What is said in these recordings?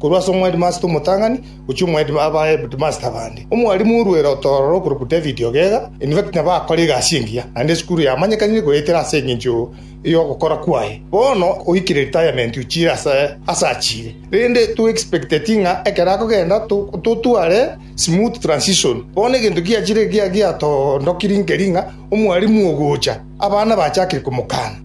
Korwa ase omwedimasita omotang'ani gochia omwedimasita abaheadmasita abande, omwarimu orwere otororo okorokwa David Ogega, in fact, nabo akore egasi engiya, naende esukuru yamanyekanire goetera ase engencho y'ogokora kwaye. Bono oikire retirement ochire ase ase achire, rende to expecteti ng'a ekero akogenda totware smooth transition. Bono egento giachire giatondokirie nkeri ng'a omwarimu ogocha, abana bachakire komokana.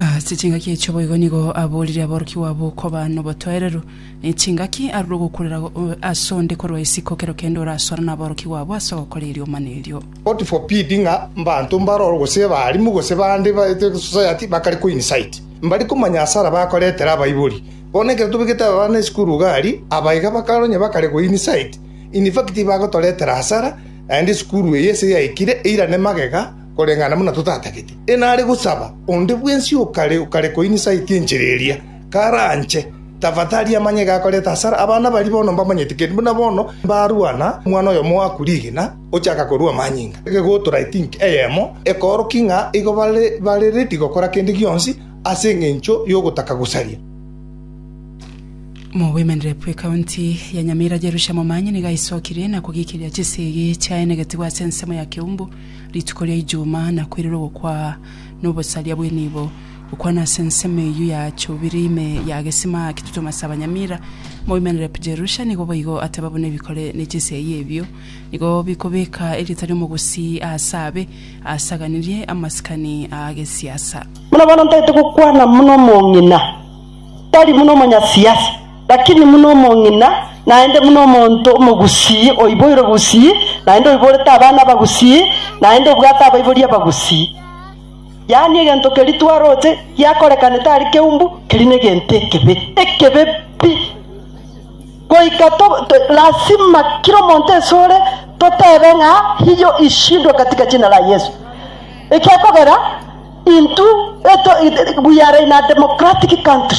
Ase chingaki echo boigo nigo aborire aborokigwa abo koba nobotoereru. Nechingaki arure ogokurera ase onde korwa isiko kero kende orasore naborokigwa abo ase ogokora eriomana erio. God forbid ng'a mbanto mbaroro gose abarimu gose bande ba society bakare ko incite mbare komanya asara bakoretera abaibori. Bono ekero tobegete aba bana esukuru iga aria, aba iga bakare onye bakare go incite, in fact tibagotoretera asara naende esukuru eye ase yaikire eirane magega, koreng'ana buna totatagete. Enare gosaba onde bwensi okare okare koinisaiti enchera eria, karanche, tafadhali amanye gakoreta hasara. Abana baria bono mbamanyete, kende buna bono mbarwana omwana oyomo oaku rigina, ochaka korua amanyinga. Egegotora I think eyemo ekoorokia ng'a igo bare bare ready gokora kende gionsi ase eng'encho y'ogotaka gosaria. Mogoimanire bw'Ekaunti ya Nyamira Jerusha Momanyi nigo aisokirie na kogikiria chisegi chiaye negetigwa ase ensemo ya Kiumbu, Rituko ria Ijuma nakwerire ogokwa nobosaria bw'enibo, gokwana ase ensemo eyio ya chubiri ime ya gesima Kitutum ase abanyamira. Moimenerep Jerusha nigo boigo ateba buna ebikore ne chisegi ebio nigo bikobeka erieta ri'omogusii aase abe aasaganirie amasikani a gesiasa. Buna bono ntaete gokwana buna omong'ina, tari buna omonyasiasa. Lakini buna omong'ina, naende buna omonto omogusii oiboirwe gusii, naende oiborete abana abagusii, naende obwate abaibori abagusii, yaani egento keria twaroche giakorekane tari keumbu, keria negento ekebe, ekebe pi. Goika lasima kera omonto esore totebe ng'a hiyo ishindwe katika jina la Yesu. Ekiakogera, intwe we are in a democratic country.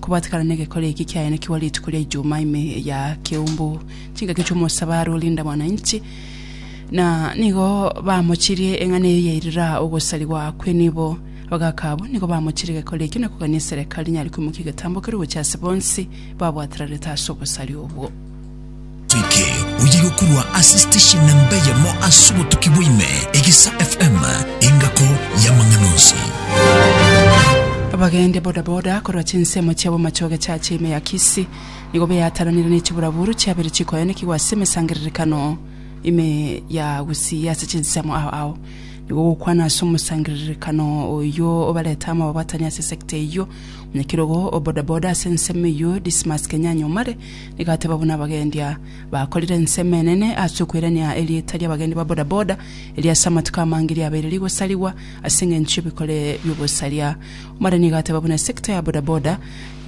Kobatekana n'egekore eke kiayanekigwa rituko ria Ijumaa ime ya Kiumbu, chingaki chi'omosabari o Linda Mwananchi, na nigo bamochirie eng'ana eye yairira ogosarigwa kw'enibo. Abagaaka abwo nigo bamochirie egekore ekio na kogania eserekari nyare koimokia egetambo keria gochia ase bonsi babwaterarete ase obosari obwo. Toike oye yokorwa ase station nemba eyemo ase obotuki bwaime, Egisa FM, engako y'amang'ana onsi. Abagendi bodaboda korwa chinsemo chiabo machoge chache ime ya Kisii nigo beataranire ne chiburaburu chiabere chikoyanekigwa ase emesangererekano ime ya Gusii. Ase chinsemo ao ao nigo gokwana ase omosangererekano oyio obarete amo ababwatani ase sector eyio. Mwenyakirogo o bodaboda ase ensemo eyio Dismas Kenyanya Omare Igateba buna abagendia bakorire ensemo enene ase okoirania erieta ri'abagendi ba bodaboda, erio ase amatuko amange riabeire rigosarigwa ase engencho y'ebikore bi'ogosaria. Omonene igateba buna sector ya bodaboda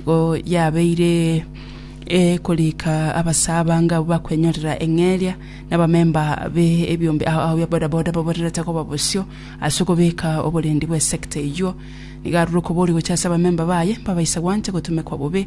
igo yabeire ekorika abasae abange abwo bakwenyorera eng'eria na abamemba be ebiombe a- ao bia bodaboda baborerete koba bosio ase okobeka oborendi bw'esector eyio. Nigo arure okoboria gochia ase abamemba baye, mbabaise gwancha gotumekwa bobe,